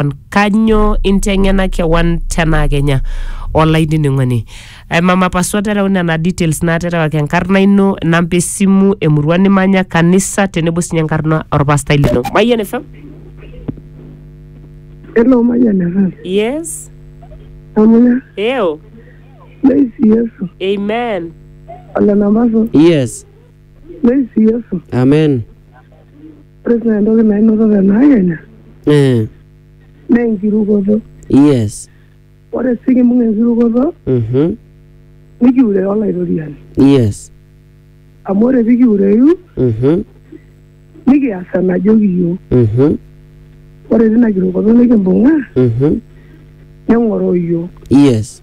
kewan kanyoo inteng'ena kewan tenaa kenya olainining'oni Eh, mama pasua tereu nena details naaterewaki enkarna ino namba esimu emurua nimanya kanisa tenebo sinye enkarna orpastai lino mayian fm Hello, Mayan FM. yes Amuya, eo Leisi Yesu. amen Ole Namaso, Yes. Leisi Yesu. Amen. ore sii entoki nainoto te naakenya Eh, naa enkirukoto yes. ore sii kimbung enkirukoto Mhm. nikiure olaitoriani Yes. amu ore pikiureyu Mhm. nikias enajoki yiok Mhm. ore tina kirukoto nikimbung'a Mhm. neng'oroo yiok Yes.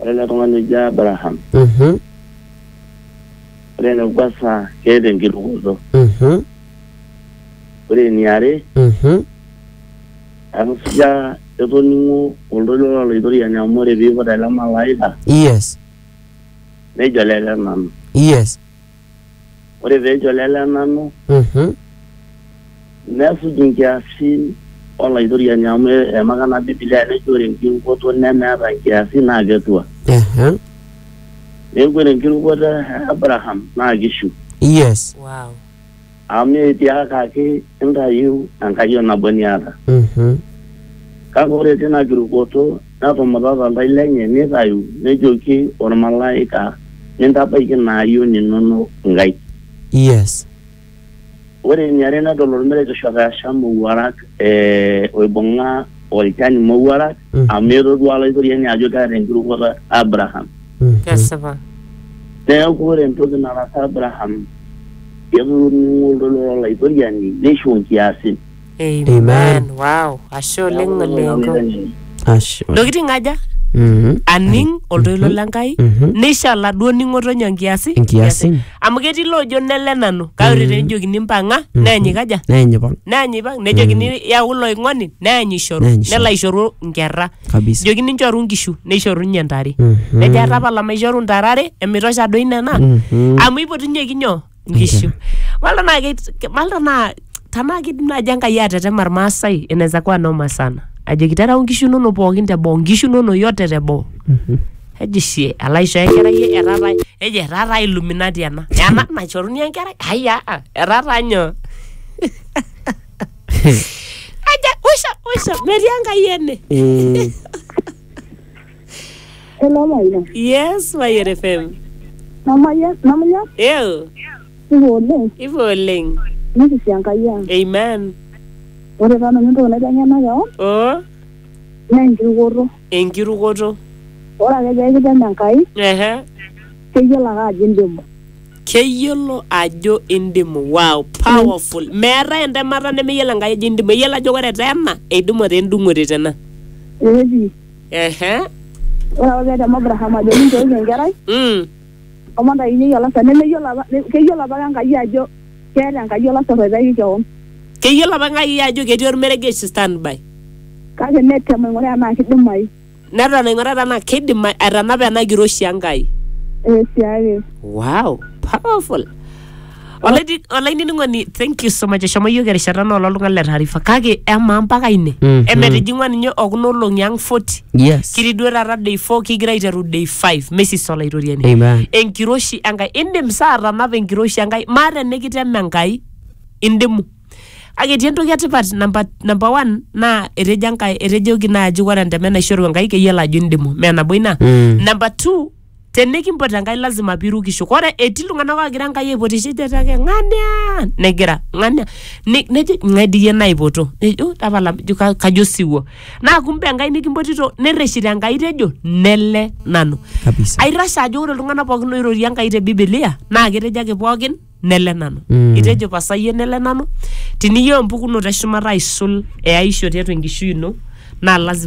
Ore ele tung'ani oji Abraham, Mhm, ore enekwasa keeta enkirukoto. mhm, Ore eniare, mhm, etusuja etoning'o oltoilo lo Laitoriani amu ore piiput ele malaika, yes, nejo lele nanu. yes. ore pee ejo lele nanu Mhm. nesuj inkiasin olaitoriani amu emaka na bibilia nejo ore enkirukoto nemeeta inkiasin naa ketua Aha. neeku ore enkirukoto e Abraham naa kishu Yes. Wow. Amu etiakaki intayiu enkayioni nabo niata. Mhm. Kake ore tina kirukoto netumutata oltau lenye neitayu nejoki olmalaika, Mintabaiki ina ayioni inono inkaik. Yes. Ore eniare nedol olmeregesh otaasham mowuarak, ee oibung'a olchani mowuarak. Mm. amu etodua olaitoriani ajo keeta enkirukoto Abraham. Mm. kesipa Neeku ore entoki nataasa Abraham, ketoning'o oltoilo lolaitoriani neisho nkiasin. amen Amen. wow ashe oleng Neeku ore olengo olaitoriani, Ashe. ntokitin aja Mhm. aning oltoilo le nkai Mhm. neisho oladuo ning'oto nyoo nkiasi Nkiasin. amu ketii loojo nele nanu kake ore tenejokini mpang'a neeny ikaja Neeny ipang. neeny ipang nejokini yau ilo oing'oni neany ishoru Neany ishoru. nelo aishoru nkerra kabisa joki ninchoru nkishu neishoru ninye ntare Mhm. nejo atapala maishoru ntare are emitosha doi nena Mhm. amu ipotunyeki nyoo nkishu malta naa keit- malta naa tanaa kidim naaji enkai atetema irmaasai inaweza kuwa noma sana ajoki terau nkishu inono pookin teboo nkishu inono yote teboo eji shie ala aisho enkerai e- etaa taa eji etaa taa illuminati ena ena naishoruni enkerai aya etaa taa nyoo aja usha usha metii enkai ene Eh, Hello, Maina. yes mayian fm Namanya, namanya, eo ivo oleng, ivo oleng nikisi Enkai ang. amen Ore taa nanu entoki naiteng'ena keon, o naa enkirukoto. Enkirukoto. Ore ake pee kitem Enkai. Ehe. Keyiolo ake ajo indimu. Keyiolo ajo indimu. Wow, powerful. Mm. Meetae entemata nemeyiolo Enkai ajo indimu. Eyiolo ajo ore te ena, eidimu te endung'ote te ena. Ehe. Ore apa pee etem Abraham ajo minchooki enkerai. Mm. omon tayinyeki olasar nemeyiolo apa keyiolo apa Enkai ajo keeta Enkai olasar oitaki kewon. Keyiolo apa Enkai ajo ketii olmeregesh standby. Kake netem aing'uraa enaa kidimayu. Neton aing'uraa tenaa kidimayu aitanapa ena kiroshi Enkai. Ee siake. Wow! Powerful! Olaidi- olainining'oni thank you so much eshomo yiok erishata naa ololtung'ani le taarifa kake emaa mpaka ine Mhm. emetijing'ua ninye okuna olong'i ang 40 yes kitii duo taata day 4 kigira aiteru day 5 mesis olaitoriani Amen. enkiroshi enkai indim saa atanapa enkiroshi enkai maa tenikitema enkai indimu kake etii entoki etipat namba namba one naa etejo enkai etejoki naaji ore enteme naishoru enkai keyiolo ajo indimu mee nabo ina Mm. namba two tenikimpot Enkai lazima pirukisho. Kore etii iltung'anak oogira Enkai aipotisho ejo ake ng'ania negira ng'ania ne- nejo ng'ae dii iyie naipoto nejo tapala jo ka- kajo osiwuo naa kumbe Enkai nikimpotito nerreshito Enkai tejo nele nanu. Kabisa. Aitashe ajo ore iltung'anak pookin oirorie Enkai te Biblia naa ketejo ake pookin nele nanu. Mm. Itejo pasa iyie nele nanu tiniyieu empukunoto eshumata aisul eaisho tiatua enkishui ino naa lazima